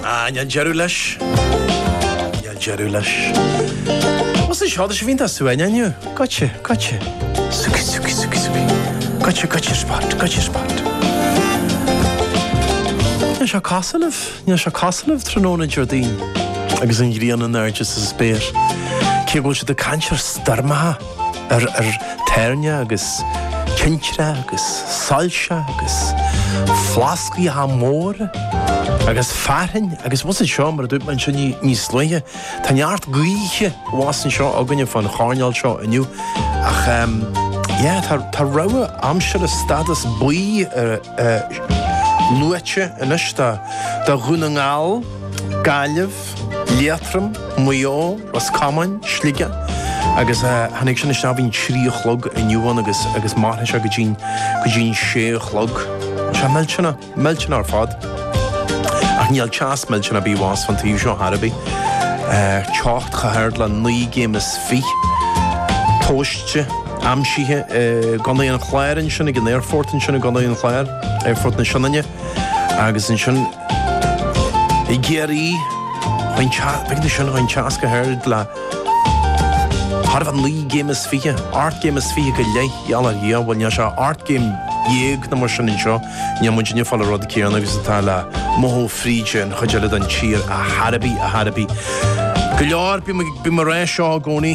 Ah, níl deireadh leis. Níl deireadh leis. Más é seo do sibh iontach suain inniu, goitse, goitse. Suki, suki, suki, suki. Goitse, goitse spot, goitse spot. Is deas casadh libh, is deas casadh libh tráthnóna Déardaoin agus an ghrian in airde sa spéir. Cé go bhfuil siad ag caint ar stoirmeacha. ar toirneach agus tintreach agus soilse agus plascaí móra agus fearthainn abhus anseo, mar a dúirt mé anseo níos luaithe. Tá neart gaoithe abhus anseo againne fán choirnéal seo inniu ach yeah, tá tá rabhadh aimsire stádas buí luaite anois do Dhún na nGall, Gaillimh, Liatroim, Maigh Eo, Ros Comáin, Sligeach agus tháinig sé isteach i bhfeidhm trí a chlog inniu ann agus agus mairfidh sé go dtí go dtí an sé a chlog. Tá teas millteanach millteanach ar fad. Ach níl teas millteanach ar bith abhus an taobh seo ar scor ar bith. Teocht chomh hard le naoi gcéim is fiche. Tomhaiste aimsithe i gContae an Chláir ansin ag an aerfort ansin i gContae an Chláir, Aerfort na Sionainne. Agus ansin i gCiarraí, bhain an teas chomh hard le chóir a bheith naoi gcéim is fiche, ocht gcéim is fiche go leith i ngeall ar Dhia, bhuel níl sé ocht gcéim dhéag nó mar sin anseo, níl muidinne ag fáil an rud céanna agus atá le mothú fríd an chuid eile den tír ar scor ar bith, ar scor ar bith. Go leor, bím ar ais seo i gcónaí.